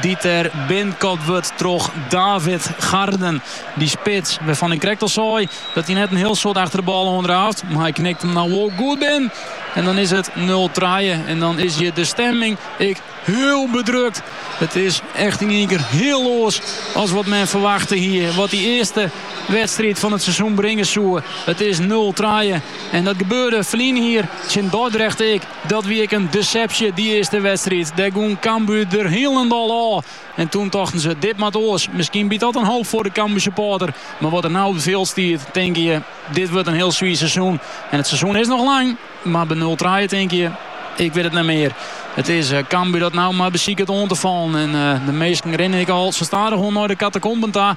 Dy't der binnenkopt wurdt troch David Garden. Dy spits, wêrfan ik krekt al sei dat hy net in hiel soad achter de bal oan draaft. Maar hy knikt him no wol goed binnen. En dan is it 0 trije. En dan is hjir de stemming ek hiel bedrukt. It is echt yn ien kear hiel oars as wat men ferwachte hie. Wat dy earste wedstriid fan it seizoen bringe soe. It is 0 trije. En dat gebeurde ferline jier tsjin Dordrecht ek. Dat wie ek in desepsje dy earste wedstriid. Dêr gong Cambuur der hielendal ôf. En toen tochten se, dit moat oars. Miskien biedt dat in hoop foar de Cambuursupporter. Mar wat der no op it fjild stiet, tinke je, dit wurdt in hiel swier seizoen. En it seizoen is noch lang, mar by nul trije tinke je, ik wit it net mear. It is Cambuur dat no mar besiket oan te fallen. En de minsken rinne ek al sa stadichoan nei de katakomben ta.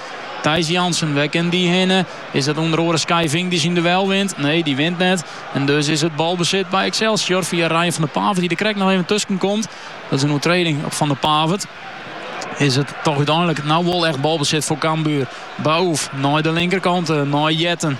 Thijs Jansen, wêr kin dy hinne? Is dat ûnder oaren Skyving dy't syn duel wint? Nee, dy wint net. En dus is it balbesit by Excelsior fia Ryan van de Pavert dy't der krekt noch even tusken komt. Dat is in oertreding op Van de Pavert. Is it toch úteinlik no wol echt balbesit foar Cambuur. Baouf nei de linkerkant, nei Jetten.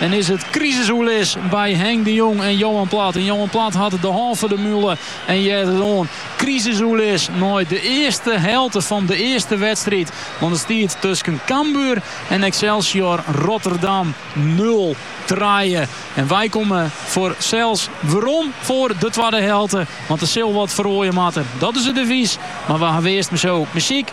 En is it krisisoerlis by Henk de Jong en Johan Plat. En Johan Plat hat de hân foar de mule en heart it oan. Krisisoerlis nei de earste helte fan de earste wedstriid. Want it stiet tusken Cambuur en Excelsior Rotterdam nul trije. En wy komme fansels werom foar de twadde helte. Want der sil wat feroarje moatte. Dat is it devys. Mar we hawwe earst mar sa muzyk.